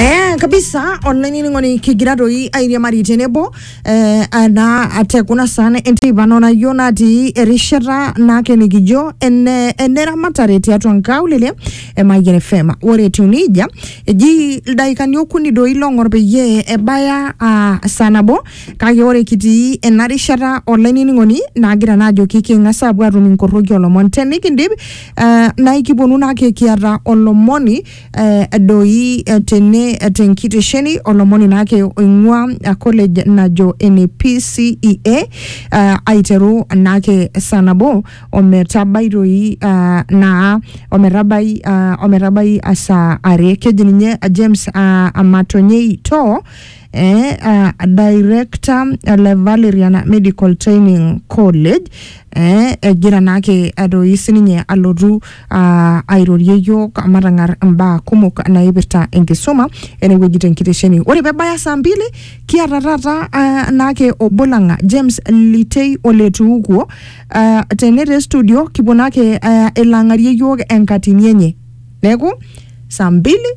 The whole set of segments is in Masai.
Eh, kabisa online iling'oni kigira toi airiamari tenebo eh, ana atekuna sana enteipa nonayioo natii erishata naake nikijo ene eneramatare tiatua nkaulele e Mayian FM ore etiu nejia eji ildaikani okuni doi long'or peyie ebaya ah, saa nabo kake ore kitii ena rishata online iling'oni nagira naa ajoki king'as apuo atum inkorroki olomon tenikindip Uh, naikiponu nake kiata olomoni uh, doi uh, tene uh, tenkitesheni olomoni nake oing'ua uh, college najo ene PCEA uh, aiteru nake saa nabo ometabai doi uh, naa ometabai uh, ometabai uh, saa are keji ninye uh, James uh, Amatonyei Too eh, uh, director eh, le Valerian Medical Training College eh, egira naake adoi sininye alotu uh, airorie yiok matang'ar imbaa kumok naipirta enkisuma enewueji tenkitesheni ore pebaya saa mbili kiata taata uh, naake obo lang James Litei oletuukuo uh, tene te studio kipuo naake uh, elang'arie yiok enkatini enye neeku saa mbili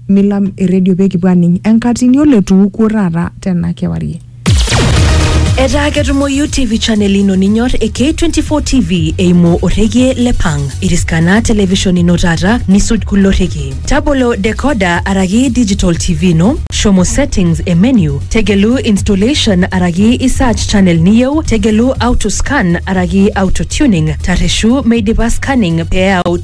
milam eredio pee kipuo aning enkatini oletuukuo taata tena kewarie Etaa ketumoyu TV channel ino ninyor e K24 TV eimu orregie le Pang. Iriskana television ino taata nisuj kulo rrekie. Tabolo decoder araki digital TV ino, shomo settings e menu, tegelu installation araki i search channel niyieu, tegelu auto scan araki auto tuning, tarreshu meidipa scanning pee eyau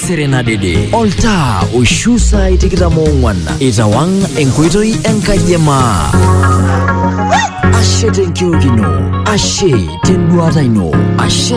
Serenadede. Oltaa oishu saai tikitam oong'wan itawang enkoitoi enkaji e maa. Ashe tenkiok ino, ashe tenduata ino, ashe